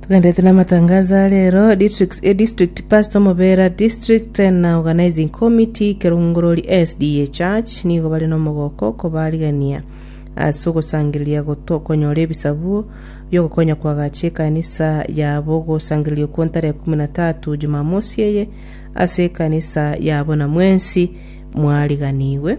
Tugenderete na amatangazo a rero district, eh, district pastor omobera district eh, na organizing committee kerongorori SDA church nigo bare nomogoko kobarigania ase ogosangereria goto konyora ebisabuo biogokonya kwagacha ekanisa yabo ogosangereria okwo ntare ekumi na tatu jumamosi eye ase ekanisa yabo na mwensi mwariganigwe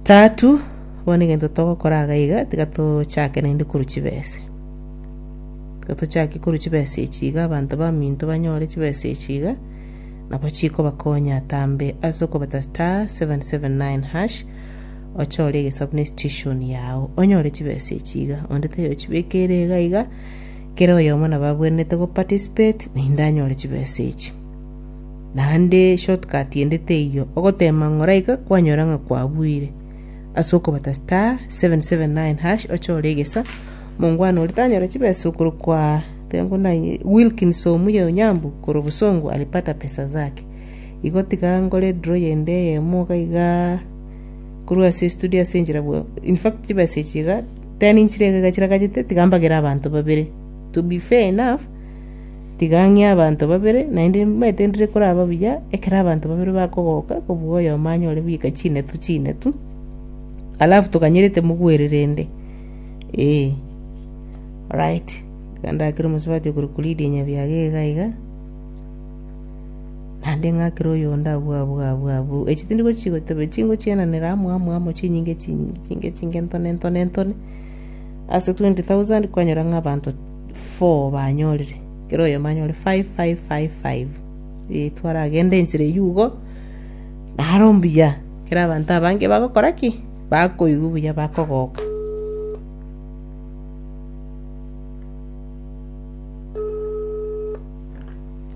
Tatu, bono egento togokora iga iga, tiga tochake naende korwa chibese. Tiga tochake korwa chibese echi iga, abanto baminto banyore chibese echi iga, nabo chikobakonya atambe ase okobeta *779#, ochore egesabu ne station yao, onyore chibese echi iga. Onde taiyo ochibekeire iga iga, kera oyomo nabo abwenerete go participate, naende anyore chibese echi. Naende shortcut ende teiyo, ogoteema ng'oraika kwanyora ng'a kwabuire. Ase okobata star 779# ochore egesa, omongwana oria tanyore chibesa okorokwa tenko na Wilkins Omuya Onyambu korwa Bosongo alipata pesa zake. Igo tiga nkore draw yende eyemo iga iga korwa ase estudio ase enchera bwe in fact chibesa echi iga ten nchire iga chiragachete tiga mbagere abanto babere to be fair enough Tiga ang'e abanto babere, naende nimbaete ndire koraba buya, ekero abanto babere bakogoka kobua oyomo anyore bweka chinetu chinetu, alafu toganyerete mogwererende. Ee. Orait, iga ndakire omosubati okore Kulidi Nyabiaga iga iga, naende ng'akere oyonde abwo abwo abwo abwo. Echi tindi gochi goteba chingochienanera amo amo amo chinyinge chinyinge chinge chinge ntone ntone ntone, ase twenty thousand kwanyora ng'a abanto. four banyorire, kera oyomo anyore five, five, five, five. Eh, twaragende enchera eyio igo, nare ombuya, kera abanto abange bagokora ki? Bakoigwa buya bakogoka.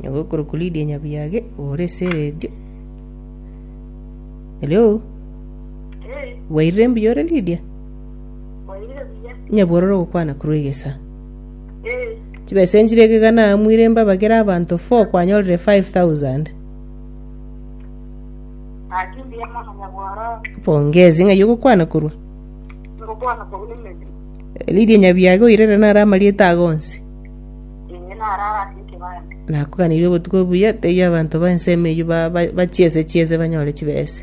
Nigo okorokwa Lydia Nyabuyage, ore ase eredio. Hello? Bwairire mbuya ore Lydia? Nyabwororo ogokwana korwa egesa. Chibesa enchire ekega naamwire mbabagere abanto four kwanyorire five thousand. Pongezi ng'ai ogokwana korwa? Lydia Nyabiaga oirere nare amarieta ago onsi. Nakoganirie obotuko obuya teiyo abanto ba ensemo eyio ba- ba- bachiese chiese banyore chibesa.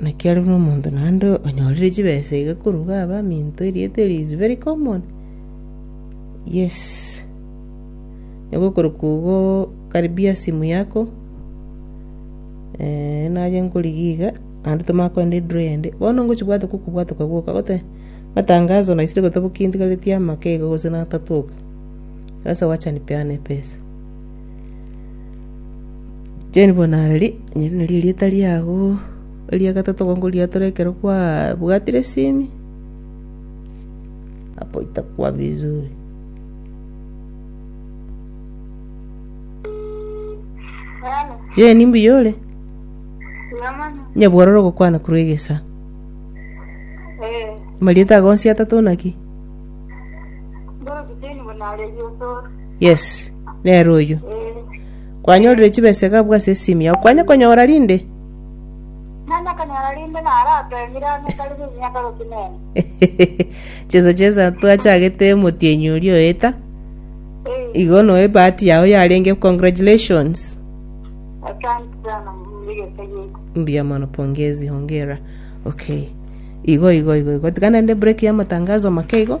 Naki are buna omonto naende onyorire chibesa iga koruga abaminto, erieta eri is very common. Yes. Nyagokorokwa igo karibia simu yako, eh, naye nkorigia iga, naende tomanye kogenda edraw eyende, bono ngochi bwate kokobwate okagoka gote, matangazo naisire gotoboki ntigaretie amake iga gose natato iga, sasa wacha nipeane epesa. Jane Bonarari, erio nario erieta riago eria gatato gokoriatora ekero kwabwatire esimi, hapo itakuwa vizuri. Jane mbuya ore? Nyabwora orogokwana korwa egesa. Amarieta ago onsi atato naki? Yes, nere oyio. Kwanyorire chibesega abwo ase esimi yao. Kwanya konyora rinde? Nanya konyora rinde narateemire amo etari rimiaka gotenena. chesa chesa twachagete motienyi oria oeta. Eh, Igo noe bahati yao yarenge. Congratulations. asante sana murigete giko. Mbia mono pongezi hongera. Okay. Igo igo igo igo. Tikana nde break ya matangazo make igo.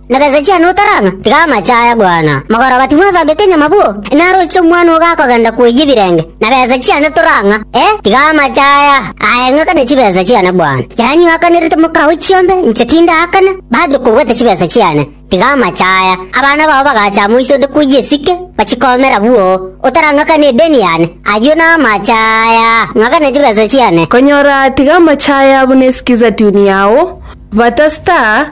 Na besa chiane otarang'a, tiga amache aya bwana. Mogoroba timwasabete nyama bo? Naroche omwana ogo akogenda koyia ebirenge, na besa chiane torang'a, ee, tiga amache aya aeng'akane chibesa chiane bwana. Yaani oakanerete mokao chiombe, inche tindaakana, bado kobwata chibesa chiane, tiga amache aya. Abana bao bagacha amo ise onde koyia esike, bachikomera bwoo. Otarang'akana edeni yane, ayio namache aya, ng'akana chibesa chiane. Konyora tiga amache aya buna esiki zaituni yao, bata star,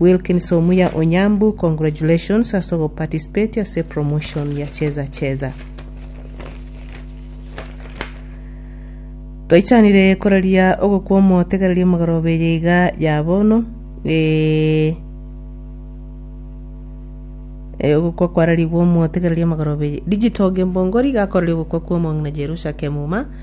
Wilkins Omuya Onyambu congratulations ase ogoparticipate ase promotion ya Cheza Cheza. Toichanire koraria ogokwa omotegereria omogoroba eye iga ya bono eh, eh, ogokwa kwararigwe omotegereria omogoroba eye digital gembongori gakorire ogokwa kwa omong'ina Jerusha Kemuma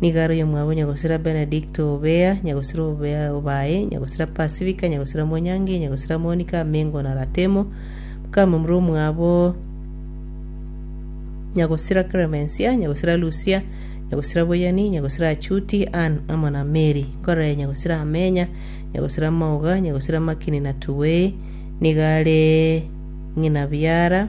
Nigo are oyomwabo Nyagosira Benedict Obea, Nyagosira Obea Obae, Nyagosira Pasifika, Nyagosira Mwanyangi, Nyagosira Monika Amengo na Ratemo, mokamamura omwabo Nyagosira Clemencia, Nyagosira Lucia, Nyagosira Boyani, Nyagosira Achuti, Ann amo na Mary. Nkorere Nyagosira Amenya, Nyagosira Maoga, Nyagosira Makini na Tuwei. Nigo are ng'ina biara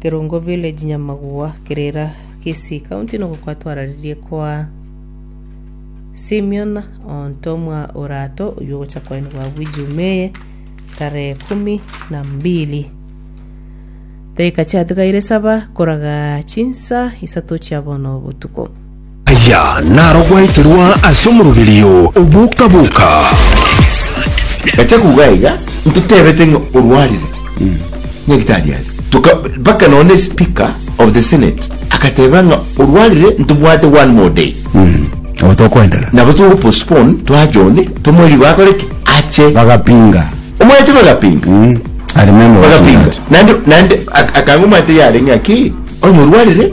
Kerongo Village Nyamagua Kerera Kisii County nigo kwatwararerie kwa Simeon Ontomwa Orato oywo ogocha kwaenigwa agwo Ijumaa tarehe kumi na mbili Daika chiatigaire saba koraga chinsa isato chia bono botuko Aya naro gwaeterwa ase omoroberio o boka-boka. Gacha kouga iga ntotebete ng'a orwarire nyagitari aria Toka, mpaka nonye speaker of the senate agateba ng'a orwarire ntobwate one more day Nabo tokoendera. nabo togo postpone twa John tomoe rigo akore ki ache Bagapinga. omwete bagapinga Mm. I remember watching bagapinga that. nande nande ak- akanga omwete yare ng'a ki onye orwarire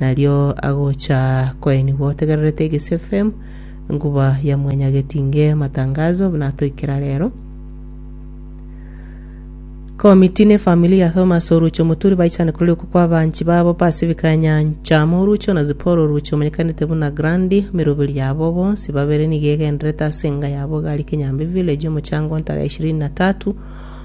nario agocha koenigwa otegererete egesfm nkuba ya mwanya getinge matangazo buna atoikera rero Komiti ne famili ya Thomas Oruchi Omoturi baichane korori oko kwa abanchi babo Pacific ya Nyancha amo Oruchi ona Zipora Oruchi omanyekanete buna Grandi emeroberi yabo bonsi babere nigo egendererete ase enga yabo egari Kinyambi Village omochango ntara ya ishirini na tatu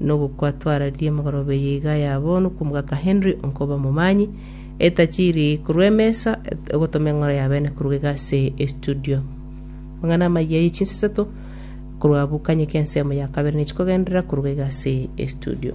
nogokwatwararirie emegoroba eye iga yabo nokw'omogaka Henry onkoba omomanyi, etachiri korwa emesa, ogotoma eng'ora y'abene koruga iga ase estudio. Amang'ana amayia ye chinsa isato korwa bukanyeke ensemo ya kabere nechi kogenderera koruga iga ase estudio.